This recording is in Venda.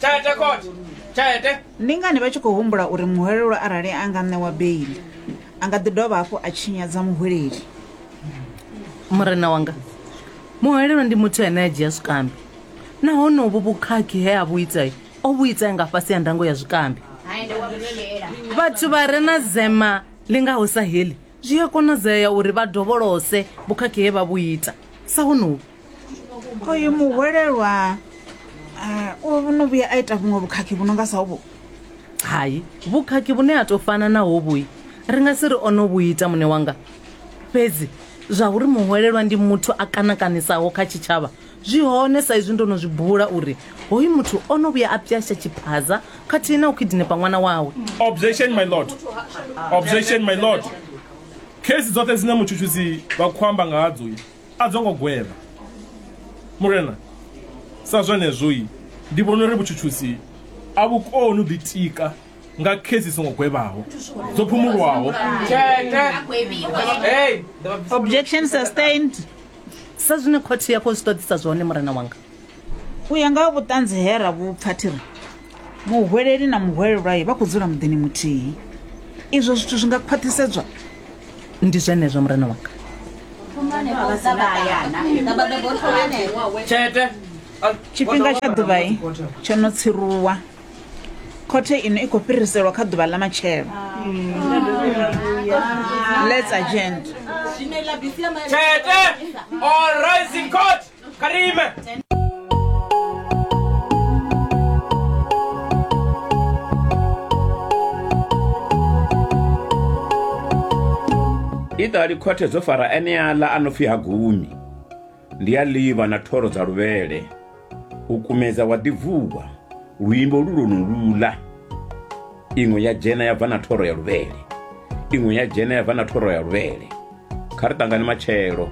tete khothe tete ndi ngani vha tshi khou humbula uri muhwelelwa arali a nga ṋewa beili a nga ḓi dovha hafhu a tshinyadza muhweleli murena wanga muhwelelwa ndi muthu ane a dzhia zwikambi nahone uvhu vhukhakhi he a vhu itai o vhu itai nga fhasi ya ndango ya zwikambi vhathu vha re na zema ḽi ngaho sa heḽi Zwi a konadzea uri vha dovholose vhukhakhi he vha vhu ita, sa honovhu. Oyu muhwelelwa o no vhuya a ita vhuṅwe vhukhakhi vhu no nga sa hovhu? Hai, vhukhakhi vhune ha tou fana na hovhui ri nga si ri o no vhu ita, muṋe wanga. Fhedzi zwauri muhwelelwa ndi muthu a kanakanisaho kha tshitshavha Zwi hone sa izwi ndo no zwi bula uri hoyu muthu o no vhuya a pyasha tshiphaza khathihi na u khidinepa ṅwana wawe. Objection, my lord. Objection, my lord. Khesi dzoṱhe dzine mutshutshisi vha khou amba nga hadzo a dzo ngo gwevha. Murena, sa zwenezwo ndi vhona uri vhutshutshisi a vhu koni u ḓitika nga khesi songo gwevhaho dzo phumulwaho objection sustained Sa zwine khothe ya khou zwi ṱoḓisa zwone, murena wanga. U ya nga ha vhuṱanzi he ra vhu pfa, thi ri, Muhweleli na muhwelelwae vha khou dzula muḓini muthihi. Izwo zwithu zwi nga khwaṱhisedzwa? Ndi zwenezwo, murena wanga. Tshifhinga tsha ḓuvha tsho no tsiruwa. khothe ino i khou fhiriselwa kha ḓuvha ḽa matshelo let's agent tete all rising court kha ri ime i ṱali khothe dzo fara eneaḽa a no pfi ha gumi Ndi a livha na thoro dza luvhele, u kumedza wa ḓi vuwa, luimbo lu lwonoluḽa. Iṅwe ya dzhena ya bva na thoro ya luvhele, iṅwe ya dzhena ya bva na thoro ya luvhele. Kha ri ṱangane matshelo.